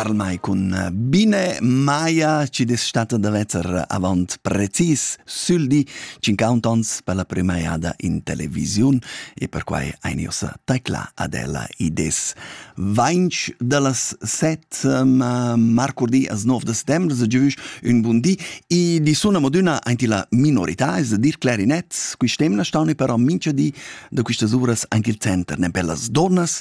Karl May cun Bine Maya ci destata da vetter avant precis sül di 50 ons per la prima jada in televisiun e perquai ein ussa tecla ad ella ides. Vainch da las set marcurdi as nov da settembre se giuvisch un bun di e di suna moduna aint la minorità es da dir clarinet quist'emna staune però mincha di da quistas uras anche il center ne per las dornas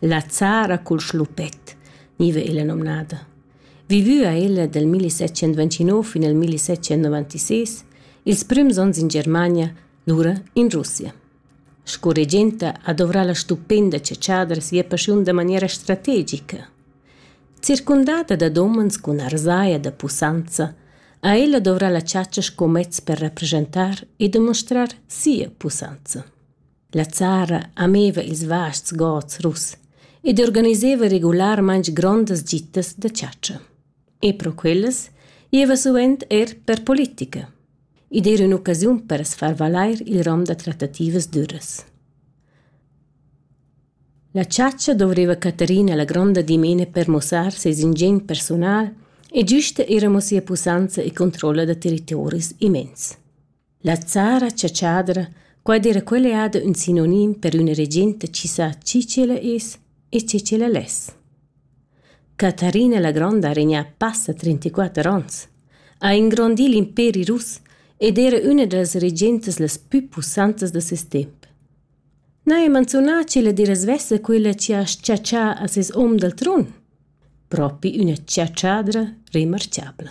La zara cul schluppet, gniva illa nomnada. Vivü ha ella dal 1729 fin al 1796, ils prüms ons in Germania, lura in Russia. Sco regenta ha dovrà la stupenda chatschadra sia paschiun da maniera strategica. Circundata da domens cun arzaia da pussanza, ha ella dovrà la chatscha sco mez per rappresentar e demonstrar sia pussanza. La Zara ameva ils vasts gods russ ed organiseva regularmaing grondas gitas da chatscha. E pro quellas gieva suvent eir per politica. Id era ün'occasiun per as far valair il rom da trattativas düras. La chatscha dovreva Caterina la gronda dimena per mussar ses ingegn personal e giüsta era mo sia pussanza e controlla da territoris immens. La zara chatschadra, quai d'eira quella eada ün sinonim per üna regenta chi sa chi ch'ella es e che ch'ella less. Catarina la Gronda ha regnà passa trentaquatter ons, ha ingrondì l'imperi russ ed era üna da las regentas las pü pussantas da ses temp. Na he manzunà ch'ella d'eira svessa quella chi ha s-chatschà a ses hom dal tron? Propi üna chatschadra remarchabla.